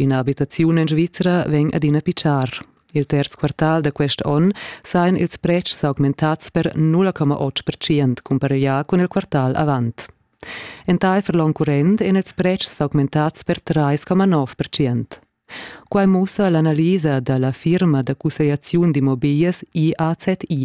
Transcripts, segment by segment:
Ina abitaziun en Svizra vegn adina pitschar. Il terz quartal da quest onn sajan ils pretschs s'augmentads per 0,8 percent cumpareglià cun il quartal avant. Entaifer l'onn current èn ils pretschs s'augmentads per 3,9 percent. Quai mussa l'analisa da la firma da cussegliaziun d'immobiglias IAZI.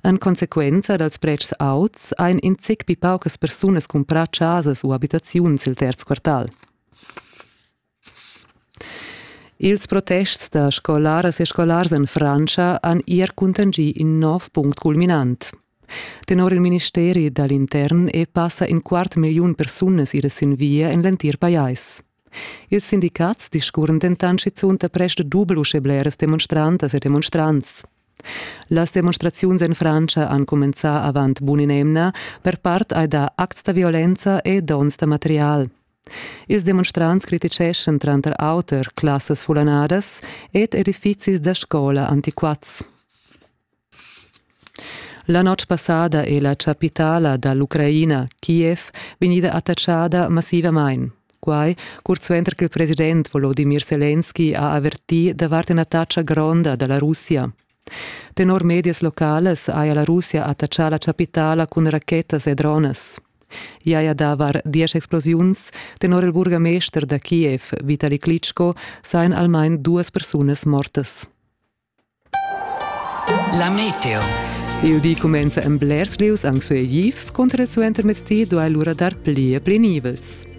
En consequenza dals pretschs auts ein in zic pi paucas persunas cumprà chasas u abitaziuns il terz quartal. Ils protests da scolaras e scolars en Frantscha han er cuntanschì in nov punct culminant. Tenor il ministeri da l'intern e passa in quart milliun persunas ira sin via en l'entir pajais. Ils sindicats discurren dentant schizunt da prest dubel uschè bleras demonstrantas e demonstrants. Las demonstraziuns en Frantscha han cumenzà avant bun in'emna, per part hai dà acts da violenza e dons da material. Ils demonstrants criticeschan tranter auter classas fullanadas ed edifizis da scola antiquats. La notg passada è la chapitala da l'Ucraina, Kiev, vegnida attachada massivamain. Quai curt suenter che il president Volodimir Selenski ha avertì davart in'attacca gronda da la Russia. Tenor medias localas haja la Russia attachà la chapitala cun rachetas e dronas. I haja dà var diesch explosiuns. Tenor il burgamester da Kiev, Vitali Klitschko, sajan almain duas persunas mortas. La meteo. Il di cumenza en blers lieus anc sueiv, cunter il suenter mezdi duai lura dar pli e pli nivels.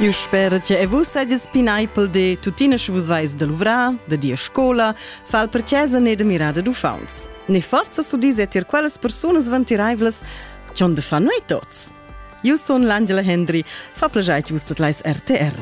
Eu sper che e vus sajas pineipel de tuttina che vus vais da luvrar, da dir scola, fal per chesa ne da mirada d'uffants. Ne forza su dise tir quellas persunas vantiraivlas che on de fa noi tots. Eu sun l'Angela Hendry, fa plajai vus tot leis RTR.